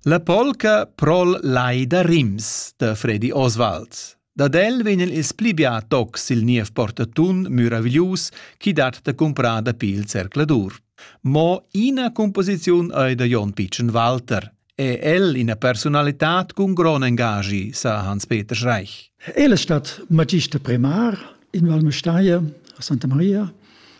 La polca pro'l Lai da Rims da Fredi Oswald. Dad el vegn il pli bia toc sil niev portatun muraviglius chi dat da cumprar dapi il zercladur. Mo ina composiziun ei da Jon Pitschen Walter. È el ina personalità cun grond engagi, sa Hans-Peter Schreich. El è stat magista primar in Valmestaie a Santa Maria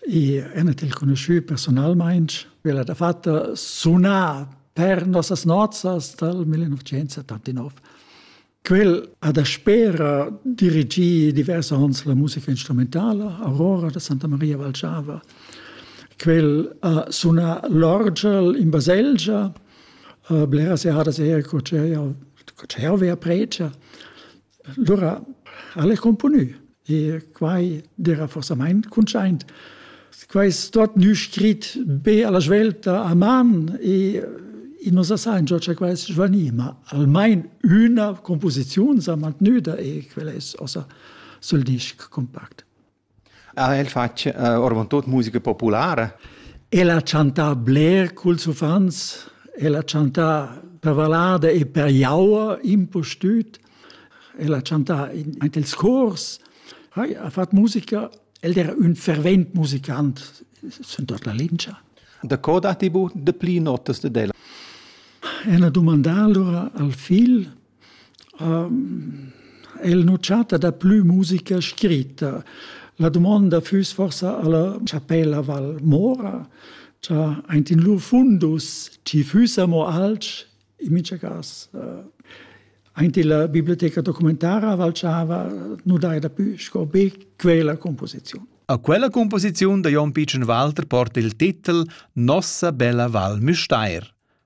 e enet il conosciu personalmein quella da fatta suna per nossas nozzas dal 1979. Quel ha da spera dirigi divers ons la musica instrumentala Aurora da Santa Maria Valciava. Quel ha suna l'orgel in baselgia, blera seadas er co c'è avea pregia. Lura al è cumponü e quai d'eira forsamaing cuntschaint. Quai stot gnü scrit be alla svelta a man e i nu sa saingia cha quai es svanì, ma almain üna cumposiziun s'ha mantgnüda e quel es ossa sül disc cumpact. Ha el fatg uh, ormontut musica populara? El ha chantà bler culs uffants, el ha chantà per vallada e per jaua, impustüt. El ha chantà in, in dels cors, ha, ha fatg musica. El era un fervent musicant, sen tot la lingia. Da co datti bu de pli notas de ella? E ha dumandà allora al figl El nu chatta daplü musica scritta. La dumonda füss forsa alla chapella Val Mora, cha aint in lur fundus chi füssa mo alch, in mincha cas aint illa biblioteca documentara valchava nu daja dapü sco be quella composiziun. A quella composiziun da Jon Pitschen Walter porta il titel Nossa bella Val Müstair.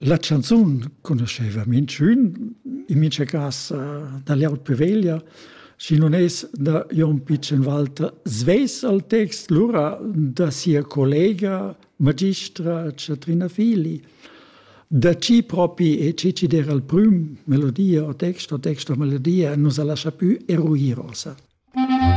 La chanzun conoscheva minchün, in mincha cas da Leot Peveglia, schi nun es da Jon Pichenwalter svess al text, lura da sia collega magistra Chatrina Fili. Da chi propi e chi chi der al prüm melodia o text o text o melodia nu sa lascha pü eruir ossa.